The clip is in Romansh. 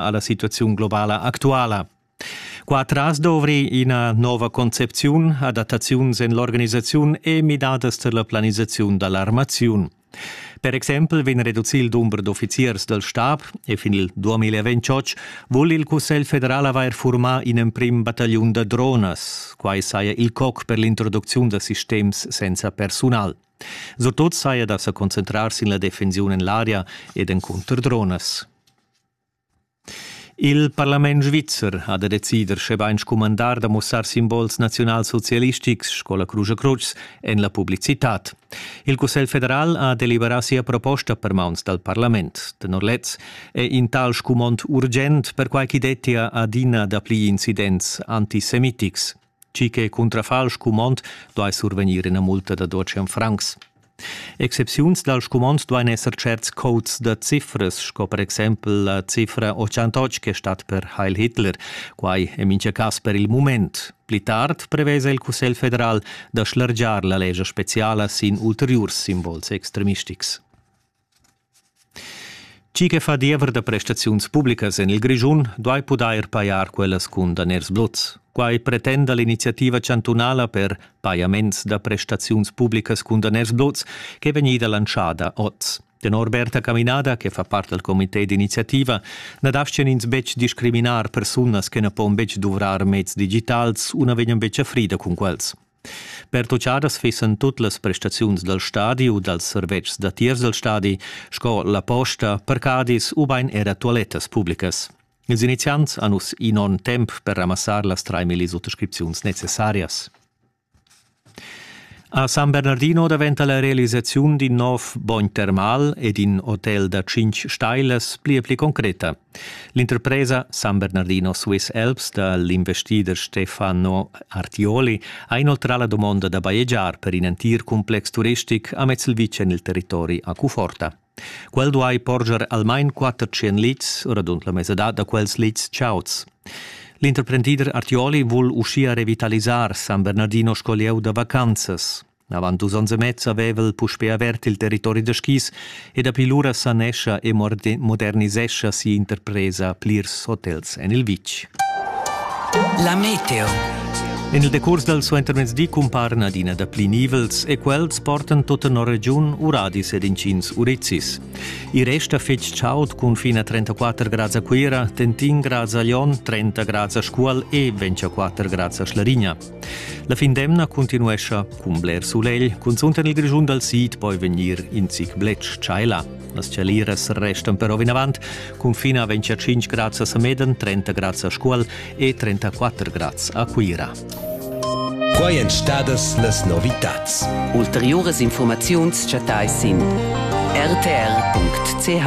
alla situaziun globala actuala. Qua tras dovri ina nova concepziun, adattaziuns en l'organisaziun e midadas per la planisaziun dall'armaziun. Per exempel vegn reducì il dumber d'offiziers dal stab e fin il 2028 vul il Cussegl federal avair furmà in emprim battagliun da dronas. Quai saja il coc per l'introducziun da sistems senza persunal. Surtut saja da sa concentrar sin la defensiun en l'aria ed encunter dronas. Il parlament svizzer ha da decider schebain scumandar da mussar simbols naziunalsocialistics sco la Crusch a Crutsch en la publicitad. Il Cussegl federal ha deliberà sia proposta per mauns dal parlament. Tenor lez è in tal scumond urgent perquai ch'i dettia adina dapli incidents antisemitics. Chi che cuntrafa'l scumond duai survegnir ina multa da 200 francs. Excepziuns dal scumond duain esser certs codes da cifras, sco per exempel la cifra 88 che stat per Heil Hitler. Quai è mincha cas per il mument. Pli tard prevesa il Cussegl federal da schlargiar la legia speciala sin ulteriurs simbols extremistics. Tgi che fa diever da prestaziuns publicas en il Grischun duai pudair pajar quellas cun daners bluts. Quai pretenda l'iniziativa chantunala per pajaments da prestaziuns publicas cun daners bluts ch'è vegnida lantschada oz. Tenor Berta Caminada, che fa part dal comité d'iniziativa, na dastgan ins betg discriminar persunas che na pon betg duvrar meds digitals u na vegnan betg a frida cun quels. Pertuchadas fissan tut las prestaziuns dal stadi u dals servetschs datiers dal stadi, sco la posta, parcadis ubain era tualettas publicas. Ils iniziants han uss in onn temp per ramassar las 3.000 suttascripziuns necessarias. A San Bernardino daventa la realisaziun d'in nov bogn termal ed in hotel da tschintg stailas pli e pli concreta. L'interpresa San Bernardino Swiss Alps da l'investider Stefano Artioli ha inoltrà la dumonda da bajegiar per in entir cumplex turistic amez il vitg en il territori a Cuforta. Quel duai porscher almain 400 lits, radund la mesadad da quels lits chauds. L'interprendider Artioli vul uschia revitalisar San Bernardino sco lieu da vacanzas. Avant dus onns e mez aveva el puspè avert il territori da skis e dapi lura sanescha e modernisescha si'interpresa plirs hotels en il vitg. La meteo. En il decurs dal suentermezdi cumparan adina dapli nivels e quels portan tut tenor regiun uradis ed inschins urizis. I resta fitg chaud cun fin a 34 grads a Cuira, tentin grads a Lyon, 30 grads a Scuol e 24 grads a Schlarigna. La fin d'emna continuescha cun bler sulegl, cunzunt en il Grischun dal sid poi vegnir in zic bletsch tschaila. Las tschaliras restan però vinavant cun fin a 25 grads a Sameden, 30 grads a Scuol e 34 grads a Cuira. Quai èn stadas las novitads. Ulteriuras informaziuns chattais sin rtr.ch.